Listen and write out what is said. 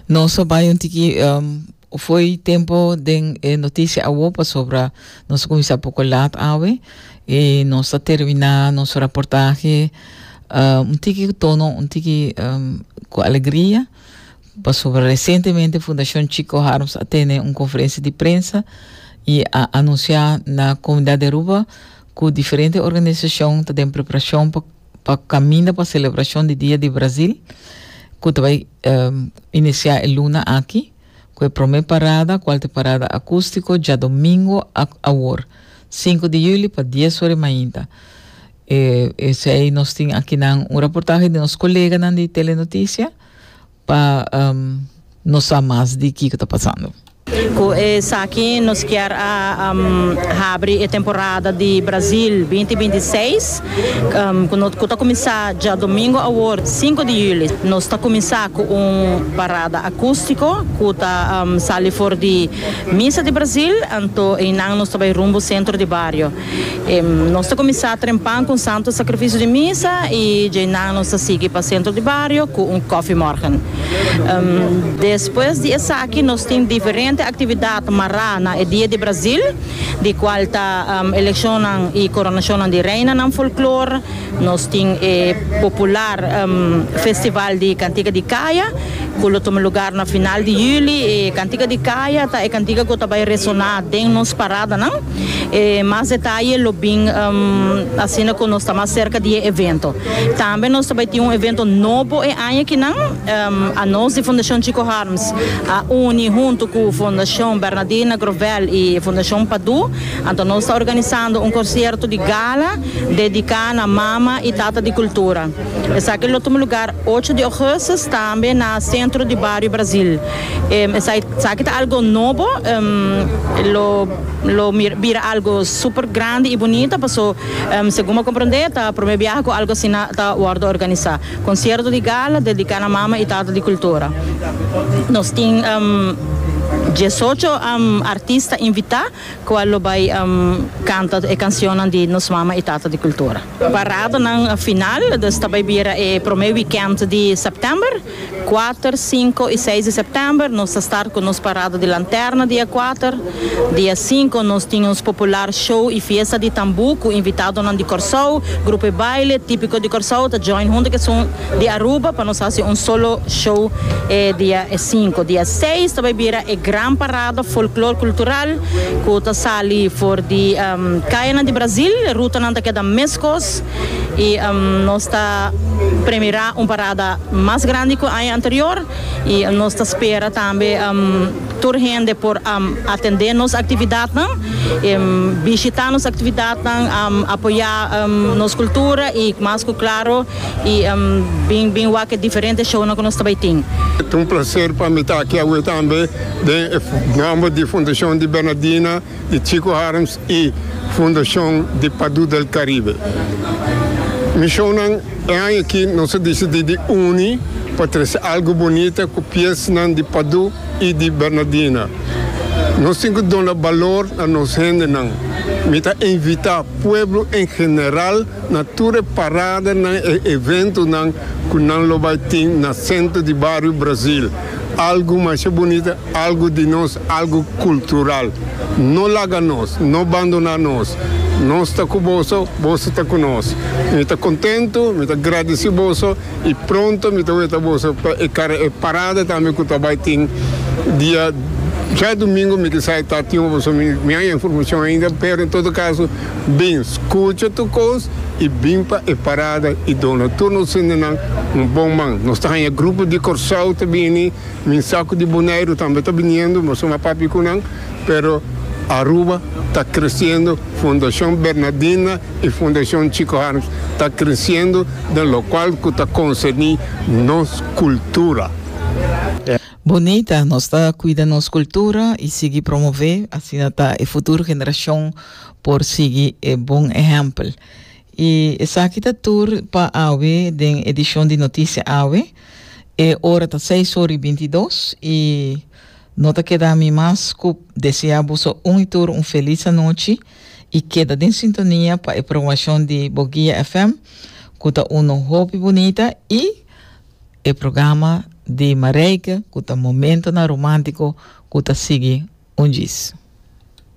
Nos so bai un tiki um, foi tempo den e noticia awo pasobra nos a comienza poco laat awe e nos a termina nos reportaje uh, un tiki cu tono un tiki um, cu alegria pasobra recientemente Fundación Chico Harms a tene un conferencia de prensa y a anuncia na comunidad de Aruba cu diferente organizacion ta den preparacion pa pa kaminda pa selebrashon di Dia di Brazil ku ta bai inisiá e luna aki ku e promé parada kual ta e parada akústiko djadomingo awor sinku di yuli pa dies ora di mainta. Esei nos tin aki nan un raportahe di nos koleganan di Telenotisia. Pa no sa mas di kiko ta pasando. Ku esaki nos kier a habri e temporada di Brazil binti binti i seis, ku ta kuminsá djadomingu awor sinku di juli. Nos ta kuminsá ku un parada akústiko ku ta sali for di Misa di Brazil, anto einan nos ta bai rumbo sentro di bario. Nos ta kuminsá trempan ku un santu sakrifisio di misa i dje nan nos ta sigui pa sentro di bario ku un kòfimòrgen. Despues di esaki nos tin diferente aktividat mará na e dia di Brazil, di kual ta elekshonnan i koronashonnan di reinanan, folklor, nos tin e popular festival di kantika di kaya ku lo tuma lugar na final di yuli. E kantika di kaya ta e kantika ku ta bai resoná den nos paradanan. E mas detaye lo bin asina cu nos ta mas cerca di e evento. Tambe nos ta bay tin un evento nobo e aña akinan. A nos di Fundacion Chico Harms a uni hunto cu Fundacion Bernadina Grovel y Fundacion Padu, anto nos ta organisando un concierto di gala dedica na mama y tata di cultura. Esaki lo tuma lugar ocho di augustus tambe na Centro di Bario Brazil. Esaki ta algo nobo, lo bira algo super grandi y bunito, paso segun bo comprende ta prome biaha cu algo asina ta wordo organisa. Concierto di gala dedica na mama y tata di cultura. Nos tin diesocho artista invita. Cual lo bay canta e cancionnan di nos mama y tata di cultura. Paradanan final dus ta bay bira e prome weekend di september. Cuater, cinco y seis di september nos ta start cu nos parada di lanterna dia cuater. Dia cinco nos tin nos popular show y fiesta di tambu cu invitadonan di Corsou. Grupo e baile tipico di Corsou ta join hunto cu esun. Di Aruba pa nos hasi un solo show e dia e sinku. Dia e seis ta bai bira e gran parada folklor kultural ku ta sali for di kayanan di Brazil. Rutanan ta keda meskos i nos ta premirá un parada mas grandi ku aña anterior i nos ta spera tambe tur hende por atendé nos aktividatnan, bishitá nos aktividatnan, apoyá nos kultura i mas ku klaro y bin bin wak e diferente shownan cu nos ta bay tin. Ta un placer pa mi ta aki awe tambe den e nomber di Fundacion di Bernardina, di Chico Harms y Fundacion di Padu del Caribe. Mi shownan e aña aki nos a dicidi di uni pa trece algo bunita cu piesnan di Padu y di Bernardina. Nos tin cu duna balor na nos hendenan. Mi ta invita pueblo en general. Na tur e paradanan e eventonan ku nan lo bai tin na sentro di bario Brazil, algu masha bunita, algu di nos, algu kultural. No laga nos, no bandoná nos. Nos ta ku boso, boso ta ku nos. Mi ta kontentu, mi ta gradisí boso i pronto mi ta weta boso pa e kara e parada tambe ku ta bai tin dia djadumingu, mi kisai ta tin ora boso, mi haya informashon ainda, pero en todo kaso. Bin skucha tur kos i bin pa e parada i duna tur nos hindenan un bon man. Nos ta haña grupo di Kòrsou ta bini, Minsaku di Boneiru tambe ta biniendo, nos lo na papia ku nan, pero Aruba ta kresiendo, Fundashon Bernadina i Fundashon Chiko Harms ta kresiendo den lokual ku ta konserní nos kultura. Bonita, nos ta kuida nos kultura i sigui promové, asina ta e futuro generashon por sigui e bon ehèmpel. I esaki ta tur pa awe den edishon di Notisia Awe. E ora ta seis ora i binti i dos i no ta keda mi mas ku deseá boso un i tur un felis anochi i keda den sintonia pa e programashon di bo Guia FM ku ta uno hopi bunita i e programa di Marijke ku ta Momentonan Romántiko ku ta sigui un djis.